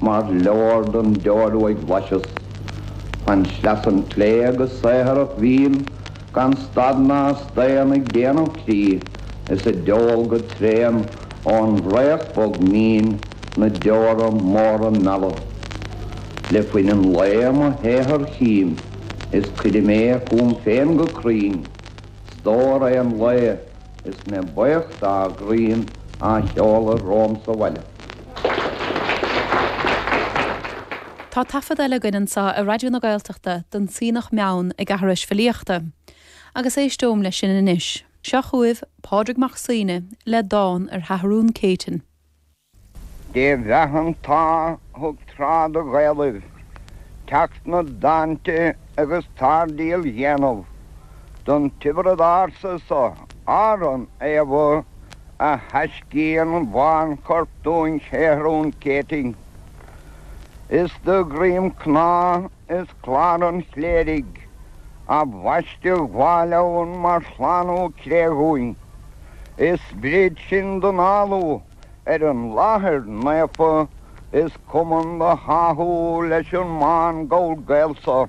Mar leor don deoir uaidh bhlaiseas fan sleasa an tsléibhe go saothrach bhím gan stad ná staon ag déanamh crí is ag deol go tréan ón bhfraoch bog mín na deora móra meala. Le fuin an lae mo shaothar chím is cuirim é chugam féin go cruinn, stór an lae is mé baoch dá dhroim á sheoladh romham sa bhaile. Tá taifead eile againn anseo ar Raidió na Gaeltachta den tSuibhneach Meann ag aithris filíochta, agus éisteoim leis sin anois. Seo chugaibh Pádraig Mac Suibhne le dán ar Sheathrún Céitinn. Dé bheatha an t-ádh thug tráth do Ghaelaibh teacht 'na dtáinte agus táirdeal dhéanamh don Tiobraid Ársa so, Árann Aodha, a thaisceann bánchorp dúinn Sheathrún Céitinn. Is de dhroim cnámh is clár an chléirigh a bhaisteadh Bhail' Eoin mar shlánú cré dhúinn, is sprid sin don fhálú ar an láthair naofa is cumann do tháthú leis an mbán gabhal Gael so.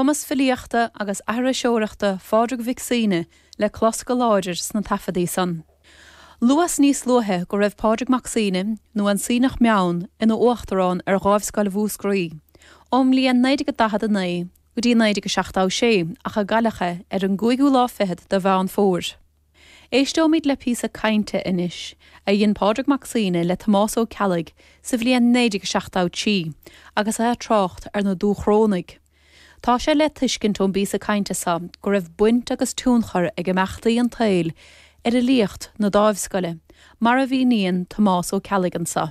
cumas filíochta agus aithriseoireachta Phádraig Mhic Suibhne le clos go láidir sna taifeadaí san. Luas níos luaithe go raibh Pádraig Mac Suibhne, nó an Suibhneach Meann, ina uachtarán ar Dháimhscoil Mhúscraí ón mbliain 1949 go dtí 1976 ach cailleadh é ar an gcúigiú lá fichead de Mheán Fómhair. Éisteoimid le píosa cainte anois a dhein Pádraig Mac Suibhne le Tomás Ó Ceallaigh sa bhliain 1973 agus é ag trácht ar na Dúchrónaigh. Tá sé le tuiscint ón bpíosa cainte seo go raibh baint agus tionchar ag imeachtaí an tsaoil ar fhilíocht na Dáimhscoile, mar a mhíníonn Tomás Ó Ceallaigh anseo.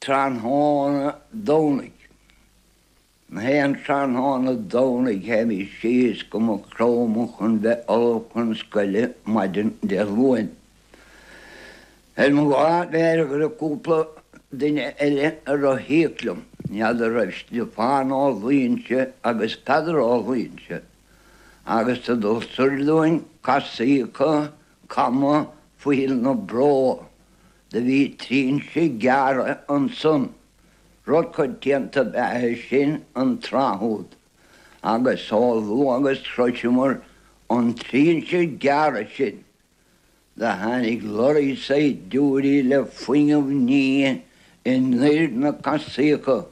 Tráthnóna Domhnaigh. Gach aon tráthnóna Domhnaigh théimís síos go Maigh Chromtha chun bheith ullamh chun scoile maidin Dé Luain. Ar mo lá mheirgre bhí cúpla duine eile ag rothaíocht liom. N'fheadar an raibh Stiofán Ó Loingsigh agus Peadar Ó Loingsigh agus sa dul soir dúinn casaíocha cama Phoill na Bró. Do bhí trinse gearrtha ansan rud coitianta ab ea sin an tráth úd agus chomh luath agus shroiseamar an trinse gearrtha sin do tháinig lorry saighdiúirí le fuinneamh nimhe anoir na casaíocha.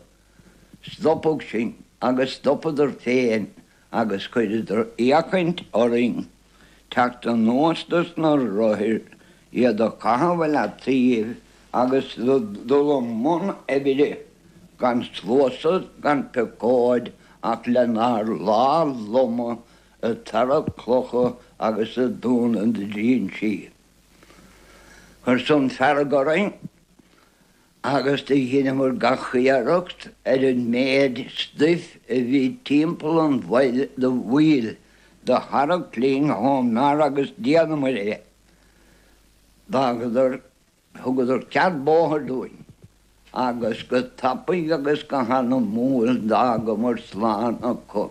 Stopadh sinn agus stopadar féin agus chuireadar fhéachaint orainn teacht anuas do sna rothair iad a chaitheamh i leataoibh agus dul i mbun oibre gan sluasad gan piocóid ach lenár lámha loma ag tarrac clocha agus ag dúnadh trínsí. Chuir san fearg orainn. agus do dheineamar gach iarracht ar an méid stuif a bhí timpeall an bhaill do bhual do tharrac linn hón mbeár agus dheineamar é. D'fhágadar, thugadar cead bóthair dúinn agus go tapaidh agus go hanamúil d'fhágamar slán acu.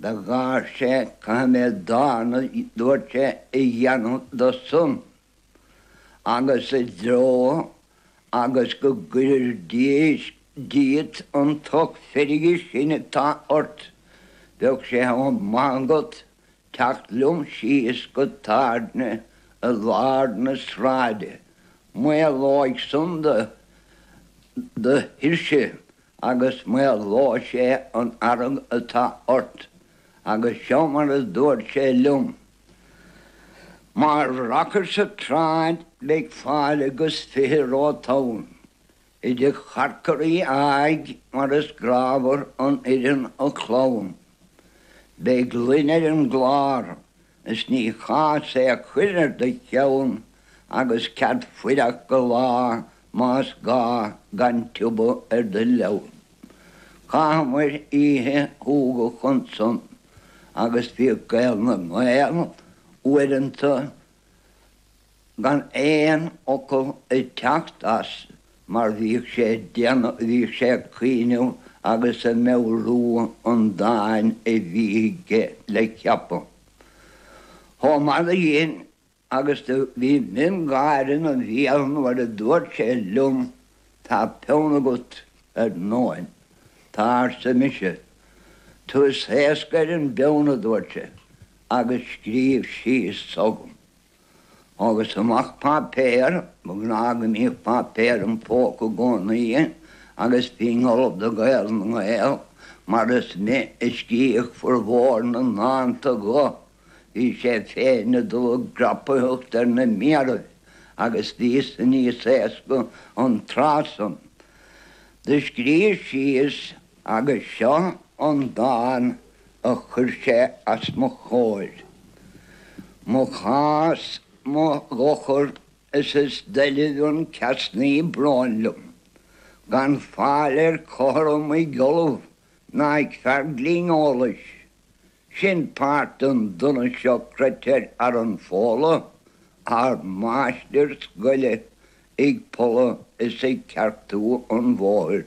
Do gháir sé caithfidh mé dán a dúirt sé a dhéanamh do san agus i dtreo agus go gcuirir díot an tocht feirge sin atá ort. Bheadh sé chomh maith agat teacht liom síos go tábhairne i lár na sráide. Maolóidh san do thuirse. agus maolóidh sé an fhearg atá ort agus seo mar a dúirt sé liom, Má rachair sa tsráid beidh fáilte agus fiche romhat ann, i dtigh Chonchúir Uí Aodha mar is grámhar an fhoireann a chlann. Beidh gloine ar an gclár Is ní cás é a chur ar do cheann agus cead fuireach go lá más gá gan tiubhadh ar do leann. Chaitheamair oíche shúgach ansan agus bhíodh Gael na nGael uaireanta. Gan aon fhocal ag teacht as mar bhíodh sé ag déanamh, bhíodh sé ag cuimhneamh agus ag meabhrú an dáin a bhí aige le ceapadh. Chomh maith le sin agus do bhí miongháire ina bhéal nuair a dúirt sé liom tá peann agat ar ndóigh. Tá arsa mise. Tusa éasca ar an bpeann a dúirt sé agus scríobh síos dhom. Thógas amach páipéar, ba ghnáth go mbíodh páipéar im phóca i gcónaí agus bhínn ullamh do Ghael na nGael mar is mé a scríobh furmhór na ndánta dho. Bhí sé féin ag dul i gcrapaitheacht ar na méaraibh agus bhíos-sa níos éasca an tráth san. Do scríos síos. Agus seo an dán a chuir sé as mo chomhair, Mo chás, mo dhochar is is doilbh an ceasnaí bróin liom, Gan fáil ar cothrom ag ollamh ná ag fear glinn eolais, Sin páirt don donas seo croitear ar fhearann Fódla, Ár máistir scoile ag polladh is ag ceartú an bhóthair.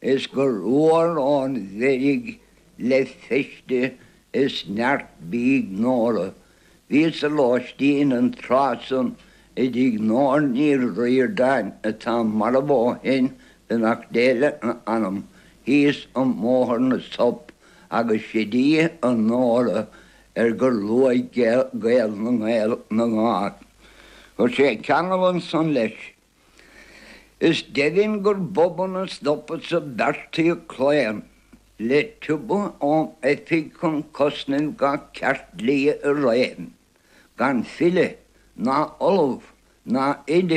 Is gur luar ón bhfeirg le feiste is neart bídh Nóra. Bhíos i lóistín an tráth san i dtigh Nóra Ní Riordáin atá marbh ó shin beannacht Dé lena hanam thíos i mBóthar na Sop agus sid í an Nóra ar gur luaigh Gael na nGael na nGág. Chuir sé ceangal ansan leis. Is deimhin gur bob an stopadh so beartaíodh claon le tobach ón oifig chun cosnaimh gach ceart dlí i réim, gan file, ná ollamh, ná oide